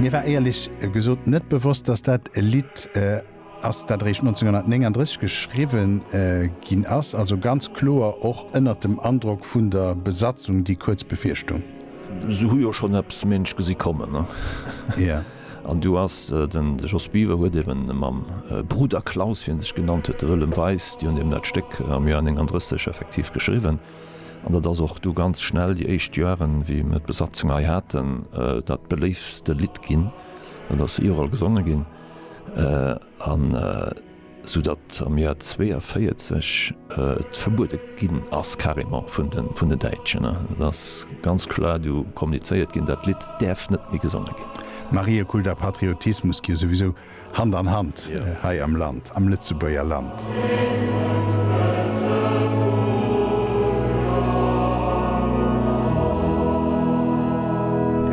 Mir war éierlech gesot net bewosst, dass dat e Lidd ass, dat eréischt 1939 geschriwwe ginn ass, also ganz kloer och ënnert dem Androck vun der Besatzung, déi kuerz bevir stung. Se hu jo schonn eppes ménsch gesi kommen. An du ass de Jos Biever huet ebe mam Bruder Klaus, wéi e sech genannt huet, de Wëllem Weis, déi hunn eben dat Stéck am Joer 39 effektiv geschriwwen. An dat ass och du ganz schnell, déi éischt Joaren, wéi mir d'Besatzung hei haten, dat beléiftste Lidd ginn. Dat ass iwwerall gesonge ginn. An esou datt am Joer 42 et verbuede ginn ass, carrément vun den Däitschen. Et ass ganz kloer du kommunizéiert ginn, dat Lidd däerf net méi gesonge ginn. Mariä, Kult a Patriotismus gi jo souwisou Hand an Hand hei am Land, am Lëtzebuerger Land.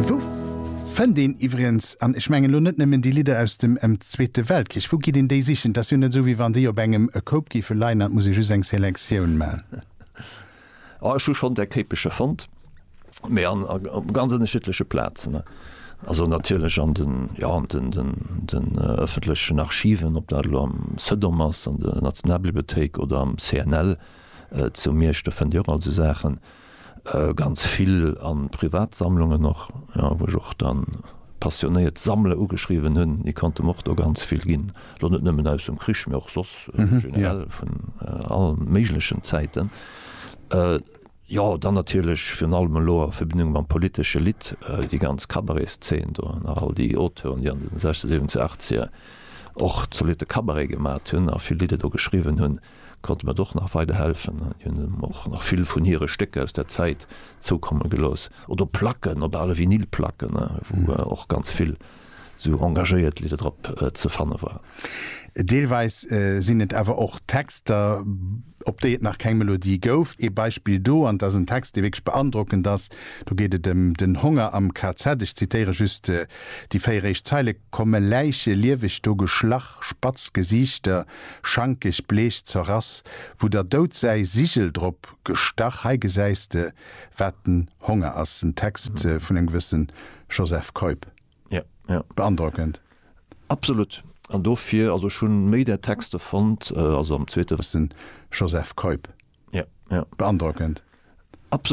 Wou fënnt een iwwregens, an ech mengen elo net nëmmen déi Lidder aus dem Zweete Weltkrich, wou geet een déi sichen? Et ass jo net esou, wéi wann déi op engem e Koup géife leien an et muss ee just eng Selektioun man. Ah, ech hu schonn där Kéipeche fonnt, mee an op ganz ënnerschiddleche Plazen. Also natierlech an den, jo, an den, den, den ëffentlechen Archiven, ob dat elo am CEDOM ass, an der Nationalbibliothéik oder am CNL zu Miersch, do fënnt Dir och all esou Saachen. Ganz vill a Privatsammlungen och, jo, wou ech och dann passionéiert Sammler ugeschriwwen hunn, déi konnte mer och do ganz vill ginn. elo net nëmmen aus dem Krich, mä och soss generell vun all méiglechen Zäiten, jo, dann natierlech virun allem elo a Verbindung mam politesche Lidd, déi ganz Cabaretsszeen do, nach all déi Auteuren, déi an de sechze, siwwenzeg, achtzeger och zolitte Cabaret gemat hunn a vill Lidder do geschriwwen hunn, konnte mer och nach weiderhelfen. Déi hunn em och nach vill vun hire Stécker aus där Zäit zoukomme gelooss oder Placken, op ale Vinylplacken, wou och ganz vill. sou engagéiert Lidder drop ze fanne waren. Deelweis sinn et awer och Texter, op déi et nach keng Melodie gouf. Ee Beispill do, an et ass en Text, dee wierklech beandrockend ass, do geet et ëm den Honger am KZ. Ech zitéiere just déi véier éischt Zeile, Komme Läiche lieweg do geschlach, spatz Gesiichter, schankeg, bleech, zerrass, wou der Doud säi Sigel drop gestach, hei gesäis de, wat den Honger ass. En Text vun engem gewësse Joseph Keup. Ja, ja. Beandrockend. Absolut. An dofir, also ech hunn méi där Texte fonnt, also am zweete. Joseph Keup. Ja, ja. Beandrockend. Absolut.